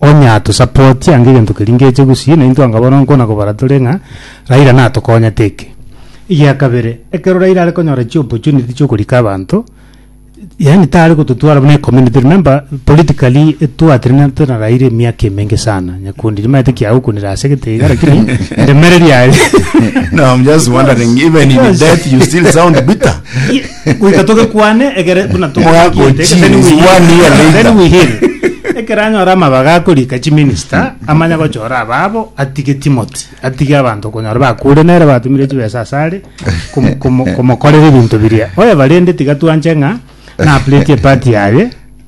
onye atusapoti ange egento keria ngeche gusii, na intwe anga bono nkona kobara tore ng'a Raila natokonyete eke. Egia kabere, ekero Raila are konyora chi opportunity chia okorika abanto, yaani tare gototwara buna ecommunity, remember politically etwatenenete na Raila emiaka emenge sana, nyakundi nimaete ki agokunire asegete iga lakini eremereria aria No, I'm just wondering, even in Yes. death you still sound bitter. goika togekwane egere buna togochiete, egere then we Mogagochiris, one year heal. later. Then we heal. Ekero anyora amabaga akorika chiminista amanya gochora ababo atige Timothy atige abanto okonyora bakure nere batumire chibesa asare komo- komo- komokorera ebinto biria oye barende tiga twanche ng'a na plate epati yaye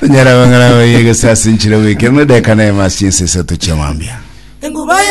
tonyara bang'ana baye gose ase enchera bwekero na edeka na emasi ense esato chiamambia Enguba